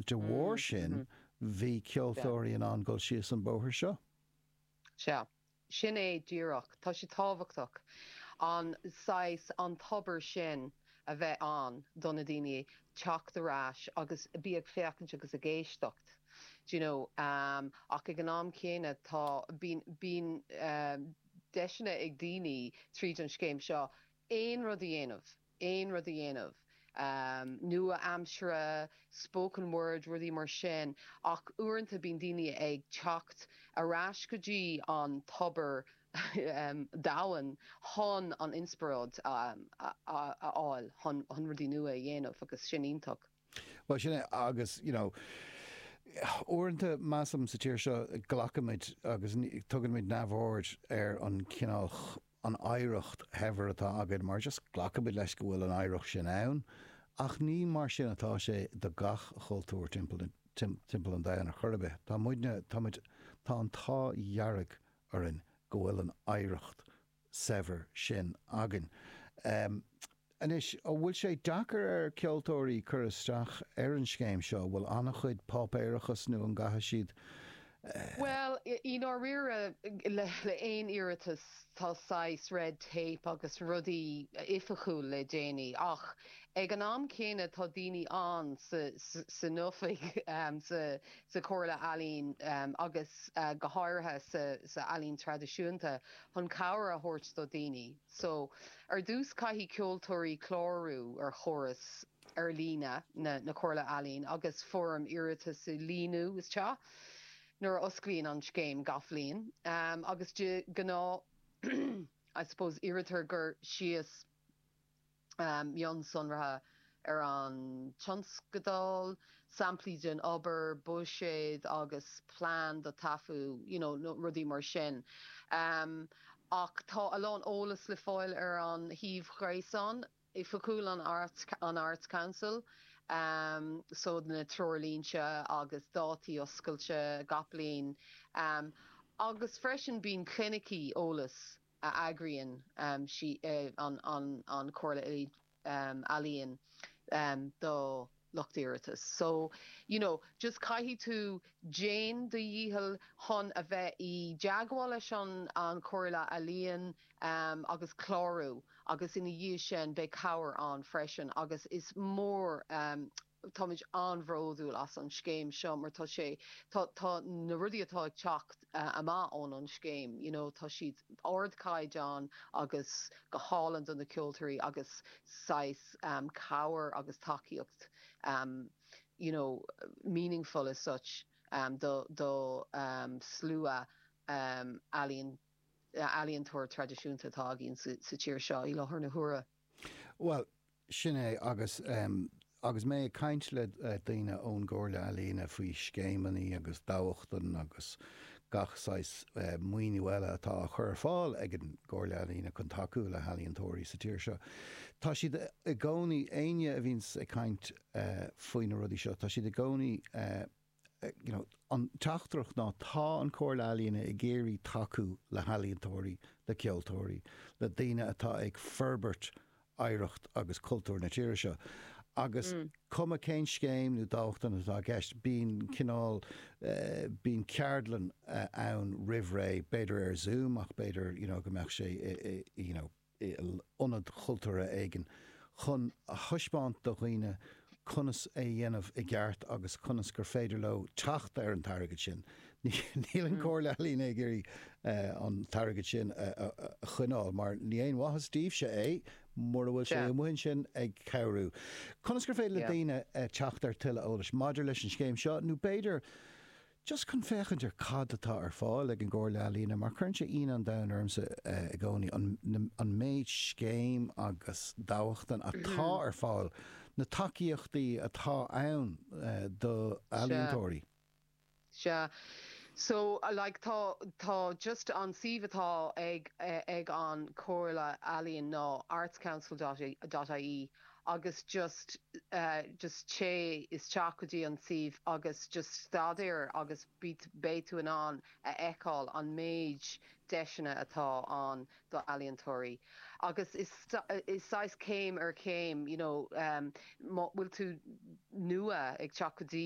De bharr sin, bhí ceoltóirí in ann dul síos an bóthar seo. Sea. Sin é díreach. Tá sé tábhachtach an saghas, an tobar sin a bheith ann do na daoine teacht ar ais agus bí ag féachaint agus ag éisteacht, do you know. Ach ag an am céanna, tá, bíonn, bíonn deiseanna ag daoine tríd an scéim seo aon rud a dhéanamh. aon rud a dhéanamh, nua-aimsire, spoken word, rudaí mar sin, ach uaireanta bíonn daoine ag teacht ar ais go dtí an tobar domhain chun an inspioráid a fháil chun rudaí nua a dhéanamh agus sin iontach. Bhuel, sin é. Agus, you know, uaireanta, measaim, sa tír seo, glacaimid agus tugaimid neamhaird ar an chineál, an oidhreacht shaibhir atá againn, mar just glacaimid leis go bhfuil an oidhreacht sin ann. Ach ní mar sin atá sé do gach cultúr timpeall an domhain ar chor ar bith. Tá muidne, tá muid, tá an t-ádh dhearg orainn go bhfuil an oidhreacht saibhir sin againn. Anois, an bhfuil sé deacair ar cheoltóirí cur isteach ar an scéim seo? Bhfuil an-chuid páipéarachas nó an gcaithfidh siad. Bhuel, i ndáiríre, le haon iarratas tá saghas red tape agus rudaí oifigiúil le déanamh ach ag an am céanna tá daoine ann san oifig, sa Chomhairle Ealaíon agus go háirithe sna healaíona traidisiúnta chun cabhair a thabhairt do dhaoine. So, ar dtús caithfidh ceoltóirí clárú ar chóras ar líne na Comhairle Ealaíon agus foirm iarratais a líonadh isteach nuair a osclaíonn an scéim gach bliain agus de ghnáth I suppose iarrtar cur síos mionsonraithe ar an tionscadal, samplaí den obair, buiséad agus plean don taifeadadh you know rudaí mar sin ach tá a lán eolas le fáil ar an shuíomh ghréasáin oifigiúil an Arts Council so na treoirlínte agus dátaí oscailte gach bliain agus freisin bíonn clinicí eolais a eagraíonn an Chomhairle Ealaíon do lucht iarratais. So, you know, just caithfidh tú déan do dhícheall chun a bheith i dteagmháil leis an Chomhairle Ealaíon agus clárú agus ina dhiaidh sin beidh cabhair ann freisin agus is mór Táimid an-bhródúil as an scéim seo mar tá sé, tá, tá na rudaí atá ag teacht amach ón an scéim, you know, tá siad ardchaighdeán agus go hálainn do na ceoltóirí agus saghas cabhair agus tacaíocht you know, meaningful as such do, do slua ealaíon, ealaíontóir traidisiúnta atá againn sa tír seo i láthair na huaire. Bhuel, sin é, agus agus mé ag caint le daoine ón gComhairle Ealaíon faoi scéimeanna agus dámhachtain agus gach saghas maoiniú eile atá á chur ar fáil ag an gComhairle Ealaíon chun tacú le healaíontóirí sa tír seo, tá siad i gcónaí, éinne a bhíonns ag caint faoi na rudaí seo, tá siad i gcónaí. you know An teachtaireacht ná tá an Comhairle Ealaíon ag iarraidh tacú le healaíontóirí, le ceoltóirí, le daoine atá ag forbairt oidhreacht agus cultúr na tíre seo. Agus cuma cén scéim nó dámhachtain atá i gceist, bíonn cineál eh bíonn ceardlann eh ann roimh ré, b'fhéidir ar Zoom ach b'fhéidir you know go mbeadh sé eh eh you know, ionad cultúrtha éigin, chun a thaispeáint do dhaoine conas é dhéanamh i gceart agus conas gur féidir leo teacht ar an t-airgead sin. Níl an Comhairle Ealaíon ag iarraidh an t-airgead sin a choinneáil mar ní haon mhaitheas dóibhse é mura bhfuil sé amuigh ansin ag cabhrú. Conas gur féidir le daoine teacht ar tuilleadh eolais maidir leis an scéim seo nó b'fhéidir Just chun féachaint ar cad atá ar fáil ag an gComhairle Ealaíon, mar cuireann sé ionadh an domhain ormsa i gcónaí an méid scéim agus dámhachtain atá ar fáil, na tacaíochtaí atá ann do ealaíontóirí. Sea. So, like, tá, tá just an suíomh atá ag, ag an Comhairle Ealaíon ná artscouncil dot, dot ie. agus just just téigh isteach go dtí an suíomh agus just staidéar agus beidh tú in ann a fheiceáil an méid deiseanna atá ann do ealaíontóirí agus is is saghas céim ar chéim you know má tá tú nua ag teacht go dtí